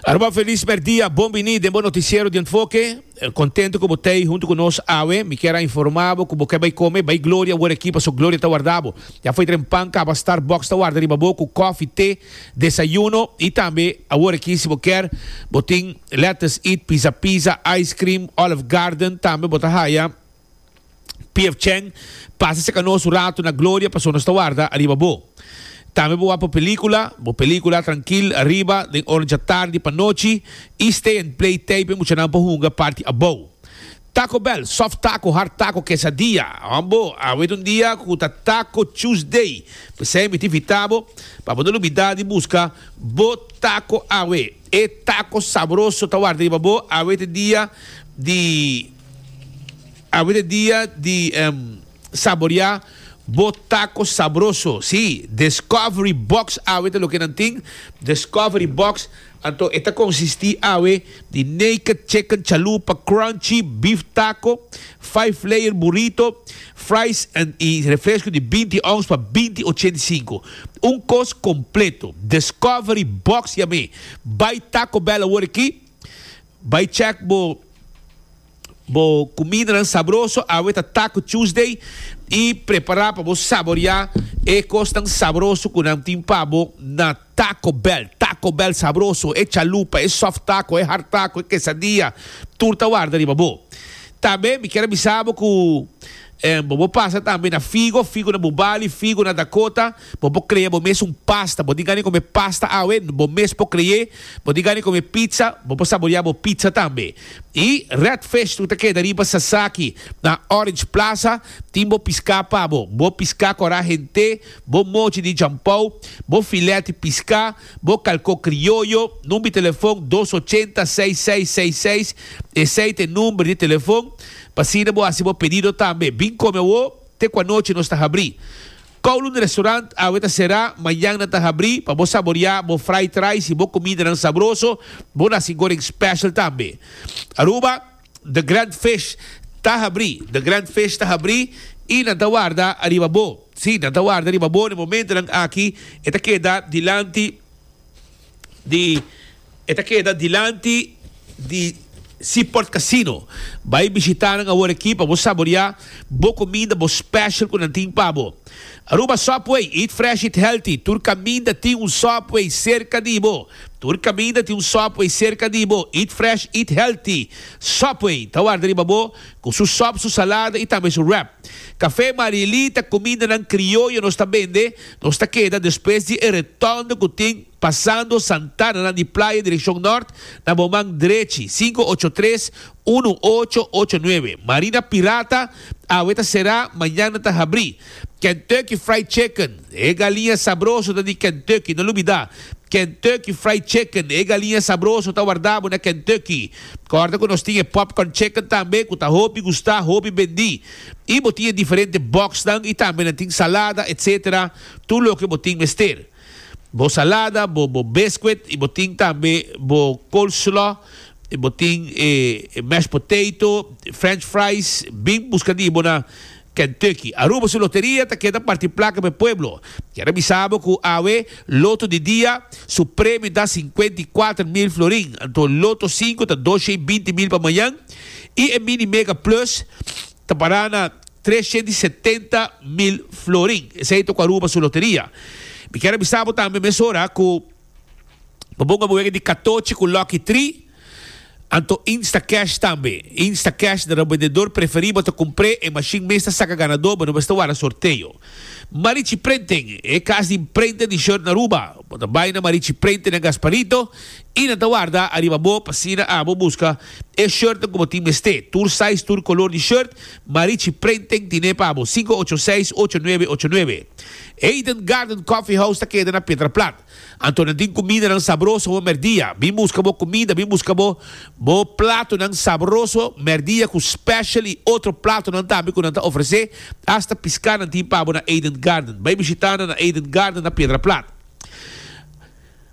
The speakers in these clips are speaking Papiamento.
Aruba Feliz Merdia, bon bini den bo noticiero di Enfoke. Contento cu bo ta ey hunto cu nos awe. Mi kier a informa bo cu bo ke bay come, bay Gloria wor aki paso Gloria ta warda bo. Ya foy dren pan caba Starbucks ta warda riba bo cu coffee, te, desayuno y tambe awor aki si bo kier bo tin Let Us Eat, Pizza Pizza, Ice Cream, Olive Garden tambe bo ta haya. Pf Cheng, pasa cerca nos un rato na gloria paso nos ta warda ariba bo. Tambe bo wak bo pelicula, bo pelicula trankil ariba den ora dja tardi pa nochi y stay and play tape e muchanan pa hunga party abou. Taco Bell, soft taco, hard taco, quesadilla, hom bo a wet un dia cu ta Taco Tuesday, p'esey mi ta invita bo pa bo no lubida di busca bo taco awe. E taco sabroso ta warda riba bo a wet e dia di. Awor e dia di saboreá bo taco sabroso. Sí, Discovery Box awe ta loke nan tin. Discovery Box, anto e ta konsistí awe di naked chicken chalupa crunchy, beef taco, five layer burrito, fries en i refresco di binti ons pa binti ochenta i sinku. Un kos kompleto. Discovery Box yam'é. Bai Taco Bell awor aki. Bai check bo bo cumidanan sabroso, awe ta Taco Tuesday y prepara pa bo saboria e cosnan sabroso cu nan tin pa bo na Taco Bell. Taco Bell sabroso, e chalupa, e soft taco, e hard taco, e quesadilla, tur ta warda riba bo. Tambe mi kier a bisa bo cu bobo pasa tambe na Figo, Figo na Bubali, Figo na Dakota. Bo por crea bo mes un pasta. Bo di gana di come pasta awe? Bo mes por crea. Bo di gana di come pizza? Bo por saborea bo pizza tambe. Y Red Fish lo ta keda riba Sasaki na Orange Plaza. Tin bo pisca pa bo. Bo pisca cora hente, bo mochi di jampou, bo filet di pisca, bo calco crioyo. Number di telefon dos ochenta seis seis seis seis. Esey ta e number di telefon. P'asina bo haci bo pedido tambe. Bin come awo, te cu anochi nos ta habri. Kowloon Restaurant awe ta será, mañana ta habrí pa bo saboreá bo fried rice i bo kumidanan sabroso, bo nasi goreng special tambe. Aruba, The Grand Fish ta habrí The Grand Fish ta habrí i nan ta warda ariba bo. Sí, nan ta warda riba bo na momentonan aki, e ta keda dilanti. di e ta keda dilanti di Seaport Casino. Bai bishita nan awor aki pa bo saborea bo kuminda, bo special ku nan tin pa bo. Aruba Subway, eat fresh, eat healthy, tur kaminda tin un Subway serka di bo. Tur kaminda tin un Subway serka di bo, eat fresh, eat healthy. Subway ta warda riba bo ku su sop, su salada i tambe su wrap. Café Marielita, kumindanan krioyo nos ta bende. Nos ta keda despues di e retondo ku tin pasando Santana nan di Playa direkshon nort na bo man drechi, sinku ocho tres, unu ocho ocho nuebe. Marina Pirata awe ta será, mañana ta habrí. Kentucky Fried Chicken, e galiña sabroso ta di Kentucky, no lo bida. Kentucky Fried Chicken, e galiña sabroso ta wardá bo na Kentucky. Kòrda ku nos tin e Popcorn Chicken tambe ku ta hopi gustá, hopi bendí. y bo tin e diferente boxnan y tambe nan tin salada etc. Tur loke bo tin mester. Bo salada, bo bo biscuit y bo tin tambe bo coleslaw y bo tin e mashed potato, french fries. Bin buska di bo na Kentucky. Aruba su loteria ta keda parti placa p'e pueblo. Kier a bisa bo cu awe loto di dia su premio ta cincuenta y cuatro mil florin, anto loto cinco ta doscientos y binti mil pa mañan. I e Mini Mega Plus ta pará na trescientos y setenta mil florin. Esei ta ku Aruba su loteria. Mi kier a bisa bo tambe mesora ku pa bo ngaba wega di katochi ku Lucky Three, anto Instacash tambe. Instacash na rabendedor preferibel ta kumpr'é e mashin mes ta saka ganadó, bo no mester wara sorteo. Marichi Printing, e kas di prente di short na Aruba. Bo ta bai na Marichi Printing na Gasparito I nan ta warda ariba bo p'asina abo buska e shirtnan ku bo tin mester. Tur size, tur kolor di shirt, Marichi Printing tine pa bo, sinku ocho seis, ocho nuebe ocho nuebe. Eden Garden Coffee House ta keda na Pietra Plat. Anto nan tin kumidanan sabroso homer dia. Bin buska bo kumida, bin buska bo bo platonan sabroso homer dia ku special i otro platonan tambe ku nan ta ofresé. Hasta piska nan tin pa bo na Eden Garden. Bai bishita nan na Eden Garden na Pietra Plat.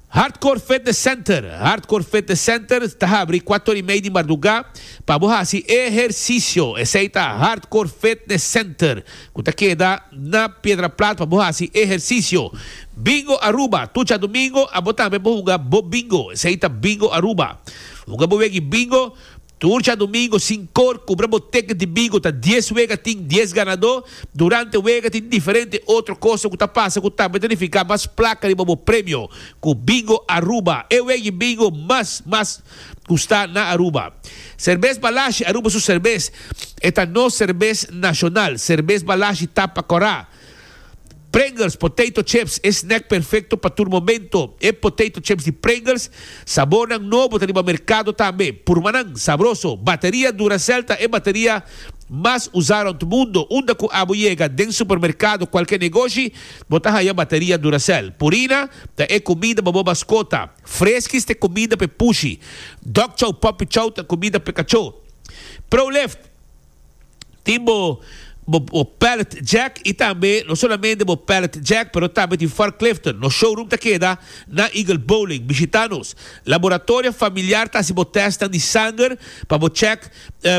Hardcore Fitness Center, Hardcore Fitness Center ta habri kuato ora i mei di mardugá pa bo hasi ehersisio. Esei ta Hardcore Fitness Center ku ta keda na Piedraplat pa bo hasi ehersisio. Bingo Aruba, tur djadumingo abo tambe bo hunga bo bingo. Esei ta Bingo Aruba. Hunga bo wegi bingo. Tur dja domingo sin kor kubra bo teket di bingo ta dies wega tin dies ganadó, durante wega tin diferente otro kosa ku ta pasa ku tambe ta nifiká mas plaka riba bo premio ku Bingo Aruba e wegi bingo mas mas gustá na Aruba. Serbes Balashi Aruba su serbes e ta nos serbes nashonal, serbes Balashi tapa Kòrá. Pringles potato chips e snack perfecto pa tur momento. E potato chips di Pringles sabornan nobo ta riba mercado tambe. Purbanan, sabroso! Bateria Duracell ta e bateria mas usa rond mundo. Unda cu abo yega, den supermercado, cualkier negoshi, bo ta haya bateria Duracell. Purina ta e comida pa bo mascota. Friskies ta e comida pa e pushi. Dog Chow Puppy Chow ta e comida pa e cachó. Proleft. tin bo bo pallet jack y tambe no solamente bo pallet jack pero tambe tin Fort Clifton. Nos showroom ta keda na Eagle Bowling. Bishita nos. Laboratoria Familiar ta haci bo testnan di sanger pa bo check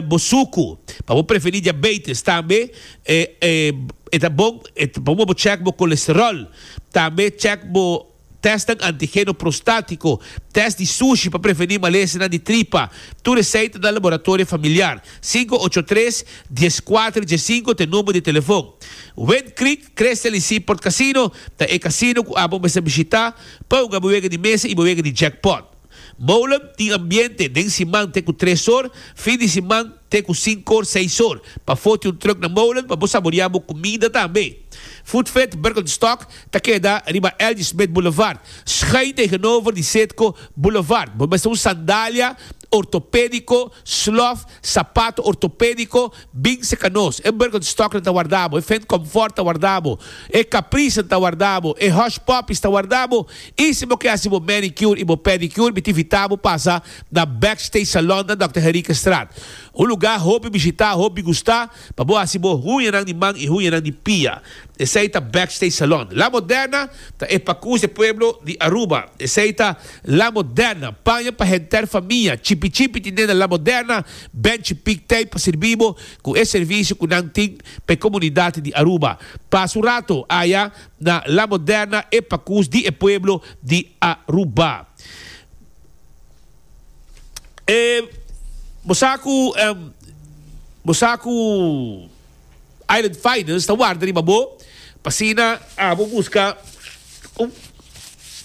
bo sucu pa bo preveni diabetes. Tambe e ta bon pa bo check bo colesterol. Tambe check bo. Tèstnan antigeno prostátiko, tèst di sushi pa prevení malesanan di tripa, tur esei ta na Laboratorio Familiar, sinku ocho tres, dies kuater, dies sinku t'e number di telefon. Wind Creek Crystal y Seaport Casino ta e casino cu abo mester bishita p'e hunga bo wega di mesa y bo wega di jackpot. Molen tin ambiente den siman te ku tres or, fin di siman te ku sinkor, seisor. Pa foti un truk na molen pa bo saborea bo kumida tambe. Foodfit Birkenstock ta keda riba L.G. Smith Boulevard, schuin tegenover di Citgo Boulevard. Bo mester un sandalia ortopedico, slof, sapato ortopedico, Bin serka nos. E Birkenstocknan ta warda bo, e Fendt Comfort ta warda bo, e Capricenan ta warda bo, e Hush Puppies ta warda bo, i si bo ke hasi bo manicure i bo pedicure mi ta invita bo pasa na Backstage Salon na Dòkter Henriquestraat. Un lugá hopi bishitá, hopi gustá pa bo hasi bo huñanan di man i huñanan di pia. Esei ta Backstage Salon. La Moderna ta e Pacús de Pueblo di Aruba. Esei ta La Moderna. Paña pa henter famia. Chipi chipi ti nena La Moderna. Benchi Pic t'ey pa sirbi bo cu e servicio cu nan tin pa e comunidad di Aruba. Pasa un rato aya na La Moderna e pacus di e pueblo di Aruba. E bo sa cu, bo sa cu. Island Finance ta warda riba bo pa asina abo buska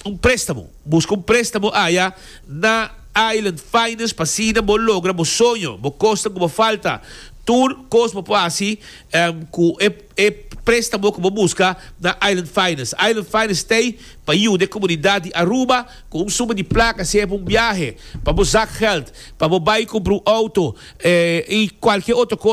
un prestamo. Buska un prestamo aya na Island Finance pa asina bo logra bo soño, bo kosnan ku bo falta. Tur kos bo por hasi ku e prestamo ku bo buska na Island Finance. Island Finance ta ei pa yuda e komunidat di Aruba ku un suma di plaka, sea pa un biahe, pa bo zakgeld, pa bo bai kumpra un outo i kualkier otro kos.